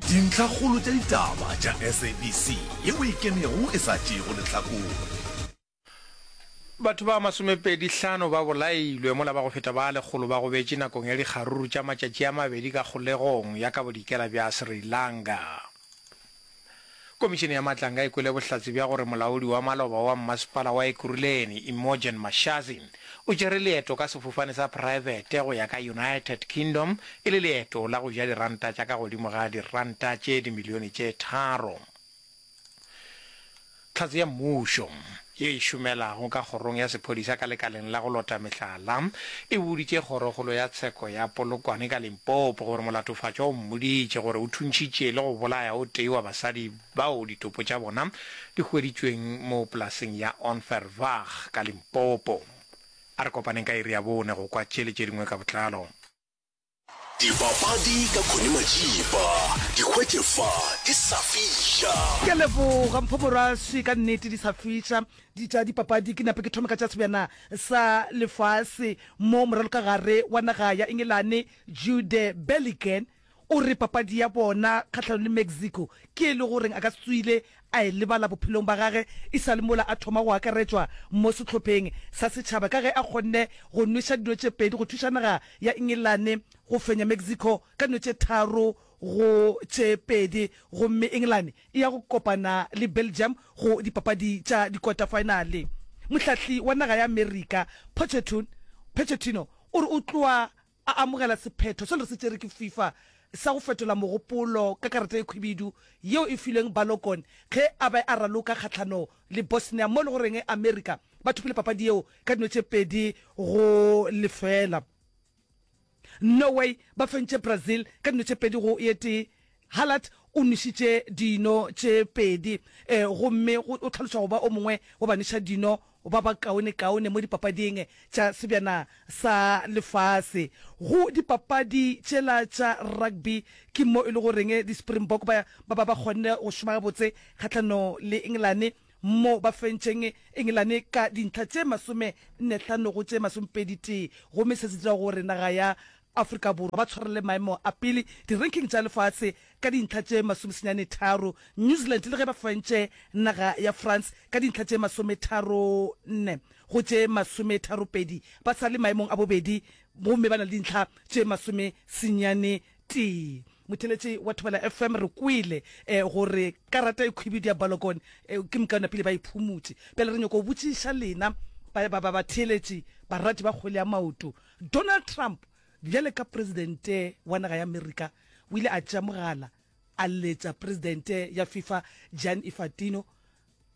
Dintlhakgolo tša ditaba tša SABC ye o e kenego e sa tšeego lehlakore. Batho ba masomepedi hlano ba bolailwe mola ba go feta ba lekgolo ba gobetše nakong ya dikgaruru tša matšatši a mabedi ka kgolegong ya ka bodikela bja Sri Lanka. Komišene ya Matlanga e kwele bohlatse bja gore molaodi wa maloba wa mmasepala wa Ekurhuleni, Imogen Mashazi, o tšere leeto ka sefofane sa praebete go ya ka United Kingdom e le leeto la go ja diranta tša ka godimo ga diranta tše dimilione tše tharo. Tlhatse ya Mmušo. ye e šomelago ka kgorong ya sephodisa ka lekaleng la go lota mehlala e boditše kgorokgolo ya tsheko ya Polokwane ka Limpopo gore molatofatšwa o mmoditše gore o thuntšhitše le go bolaya o tee wa basadi bao ditopo tša bona di hweditšweng mo polaseng ya Onverwacht ka Limpopo. A re kopaneng ka iri ya bone go kwa tše le tše dingwe ka botlalo. Dipapadi ka Connie Majiba, di hwetše fa di sa fiša. Ke a leboga Mpho Moraswi, ka nnete di sa fiša di tša dipapadi. Ke nape ke thome ka tša sebjana sa lefase mo moralokagare wa naga ya Engelane Jude Belligen o re papadi ya bona kgahlano le Mexico ke e le goreng a ka se tswile a e lebala bophelong ba gage e sa le mola a thoma go akaretšwa mo sehlopheng sa setšhaba ka ge a kgonne go nweša dino tše pedi go thuša naga ya Engelane go fenya Mexico ka dino tše tharo go tše pedi gomme Engelane e ya go kopana le Belgium go dipapadi tša dikota-faenale. Mohlahli wa naga ya Amerika Pochettino o re o tloa a amogela sephetho se re se tšere ke FIFA sa go fetola mogopolo ka karata e khwibidu yeo e filweng Balogun ge a be a raloka kgahlano le Bosnia mo e lego reng Amerika ba thopile papadi yeo ka dino tše pedi go lefela. Norway ba fentše Brazil ka dino tše pedi go e tee Halad o nwešitše dino tše pedi gomme o hlalošwa go ba o mongwe wa banweša dino ba ba kaonekaone mo dipapading tša Sebjana sa Lefase. Go dipapadi tšela tša rugby ke mo e le goreng di-Springbok ba ba ba kgonne go šoma gabotse kgahlano le Engelane mo ba fentšeng Engelane ka dintlha tše masome nne hlano go tše masomepedi tee gomme se se dira gore naga ya Afrika Borwa ba tshwareleng maemo a pele di-ranking tša lefase ka dintlha tše masomesenyane tharo, New Zealand le ge ba fentše naga ya France ka dintlha tše masometharonne go tše masometharopedi, ba sa le maemong a bobedi gomme ba na le dintlha tše masomesenyane tee. Motheeletši wa Thobela FM, re kwele gore karata e khwibidu ya Balogun ke mokaonapele ba e phumutše. Bjale re nyoko botšiša lena batheeletši, barati ba kgwele ya maoto, Donald Trump, bjale ka Presidente wa naga ya Amerika, o ile a tšea mogala a letša Presidente ya FIFA Gianni Infantino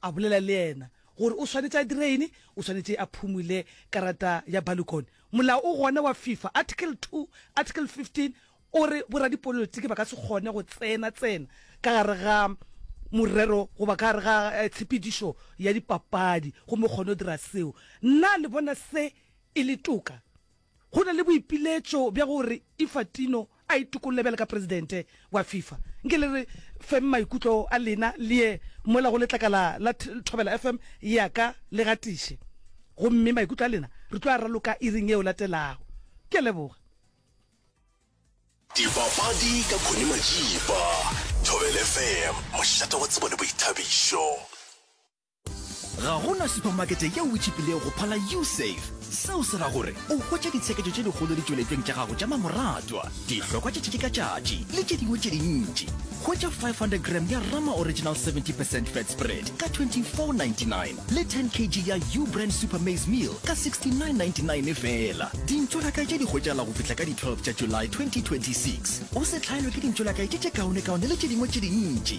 a bolela le yena gore o swanetše a dire eng, o swanetše a phumule karata ya Balukon. Molao o gona wa FIFA, Article 2, Article 15, o re boradipolotiki ba ka se kgone go tsena tsena ka gare ga morero goba ka gare ga tshepedišo ya dipapadi gomme o kgone go dira seo. Na le bona se e le toka. Go na le boipiletšo bja gore Ifatino a itokolle bjalo ka presidente wa FIFA. Nke le re feng maikutlo a lena le ye mola go letlakala la Thobela FM ya ka le gatiše. Gomme maikutlo a lena re tlo a raloka iring yeo latelago. Ke a leboga. Dipapadi ka Connie Majiba, Thobela FM, mošate wa tsebo le boithabišo. ga gona supermakete yeo o tšhipilego go phala usafe seo se ra gore o hwetša ditshekejo tše dikgolo ditšweletšong tša gago tša mamoratwa dihlokwa tša tšatši ka tšatši le tše dingwe tše dintši hwetša 500 gram ya rama original 70 percent fat spread ka 2499 le 10 kg ya u brand super maize meal ka 6999 fela dintšo la kae tše di hwetšagala go fihla ka di-12 tša july 2026 o se tlhaelwe ke dintšo la kae tše tše kaonekaone le tše dingwe tše dintši